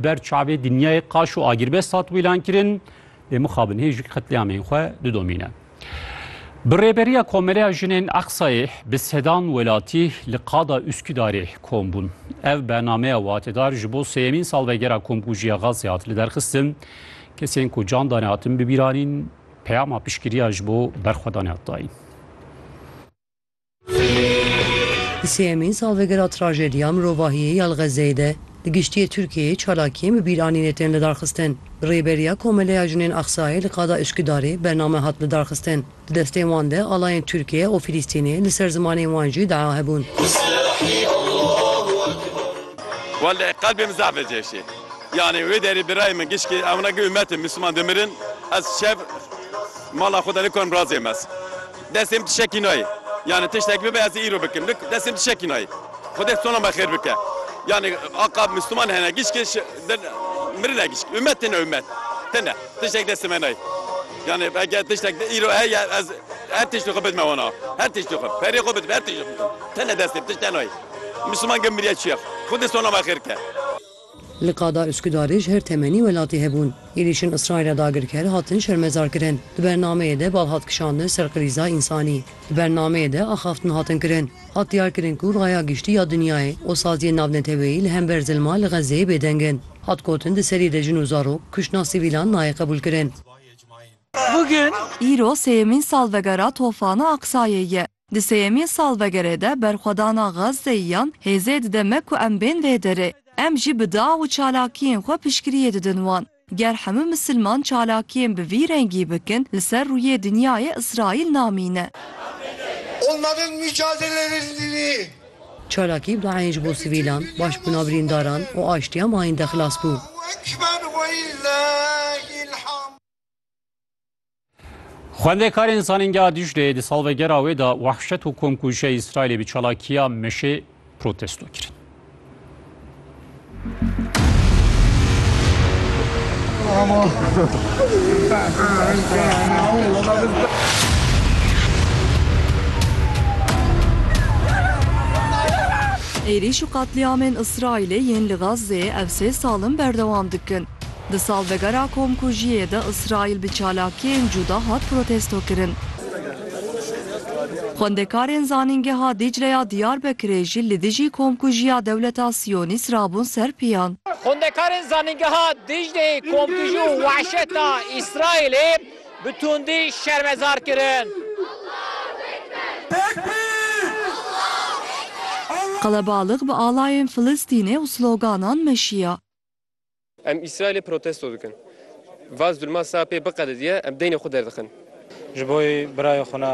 Ber çavê dinyayê qaş û agirbest hat wîlan kirin, lê mixabin hê jûk qetlîamên xwe didomîne. Bi rêberiya Komeleya Jinên Aqsayê bi sedan welatî li qada Üsküdarê kom bûn. Ev bernameya watedar ji bo sêyemîn salvegera Komkujiya Gazê hat liderxistin. Kesên ku can dane hatin bibîranîn, peyama piştgiriya ji bo berxwedanê hat dayîn. Di sêyemîn salvegera trajediya mirovahiyê ya li Xezzeyê de li giştiyê Tirkiyeyê çalakiyên bi bîranînê tên lidarxistin. Bi rêberiya Komeleya Jinên Aqsayê li qada Üsküdarê bername hat lidarxistin. Di destên wan de alayên Tirkiye û Filîstînê li ser zimanên wan jî dua hebûn. Welleh qelbê min zehf li cêşê yanê wê derê birayê min gişkê ewna gê umetê misliman dimirin ez şev mala xwe de nikonim razê mez. Destên tu şekî nayê. Yanî tiştek bibe ez ê îro bikim. Nik destên tu şekî nayê. Xwedê sona me xêr bike. Yanî aqab Mûsliman hene gişkê şi din mirine gişk. Umet tine umet. Tine. Tiştek destê me nayê. Yanî eke tiştek di îro heye ez her tiştî xwe bidime wana. Her tiştî xwe. Perê xwe bidime her tiştî xwe bidime. Tine destê tişte nayê. Mûsliman gel miriye çiye. Xwedê sona me xêr bike. Li qada Uskudarê ji her temenî welatî hebûn. Êrîşên Îsraîla dagirker hatin şermezarkirin. Di bernameyê de bal hat kişandin ser qirîza însanî. Di bernameyê de axaftin hatin kirin. Hat diyarkirin ku raya giştî ya dinyayê û saziyên navneteweyî li hember zilma li Xezzeyê bêdeng in. Hat gotin di serî de jin û zarok, kuştina sivîlan nayê qebûlkirin. Îro sêyemîn salvegera Tofana Aqsayê ye. Di sêyemîn salvegerê de berxwedana Gazzeyiyan hêzê dide me ku em bên vê derê. Em jî bi dia û çalakiyên xwe piştgiriyê didin wan. Ger hemû misilman çalakiyên bi vî rengî bikin li ser rûyê dinyayê Îsraîl namîne. Onların mücadelelerininii. Çalakî bi eyn ji bo sivîlan, başbûna birîndaran û aştiya mayîn de xilas bû. Allahu Ekber Welillahil Hamd. Xwendekarên Zanîngeha Dîcleyê di salvegera wê de wahşet û komkujiyê Îsraîlê bi çalakiya meşê protesto kirin. Êrîş û qetlîamên Îsraîlê yên li Gazzeyê ev sê sal in berdewam dikin. Di salvegera komkujiyê de Îsraîl bi çalakiyên cuda hat protestokirin. Xwendekarên Zanîngeha Dîcle ya Diyarbekirê jî li dijî komkujiya dewleta Siyonîst rabûn ser piyan. Xwendekarên Zanîngeha Dîcleyê komkujî û wahşeta Îsraîlê bi tundî şermezar kirin. Qelebalix bi alayên Filistînê û sloganan meşiya. Em Îsraîlê protesto dikin. Vaz dûlma sae pê biqedediye em deynê xwe derdixin. Ji bo yê birayê xwe na.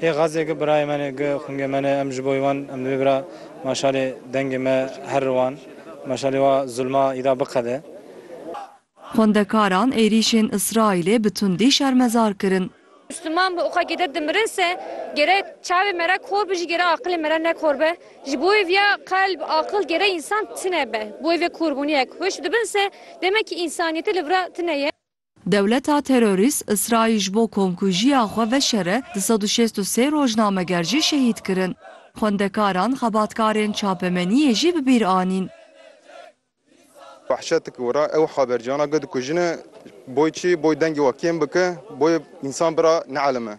Ê Xaze gi birayê me ne, gi xungê me ne, em ji bo yê wan em divê bira maşalê dengê me her ri wan maşalê wa zûlma îda biqede. Xwendekaran êrîşên Îsraîlê bi tundî şermezar kirin. Misliman bi oxekê de dimirin se gerek çavê me re kor be jî gerek aqilê me re nekor be. Ji bo wê viya qelb, aqil gerek însan tine be. Bo wê vê korbûniyek hişk dibin se demekî însaniyetê li vir a tine ye. Dewleta terorîst Îsraîl ji bo komkujiya xwe veşere du sed û şêst û sê rojnameger jî şehîd kirin. Xwendekaran, xebatkarên çapemeniyê jî bi bîr anîn. Behçet gora ew haberciyana got ku jine boy çi boy dengê we kêm bike boy însan bira neelime.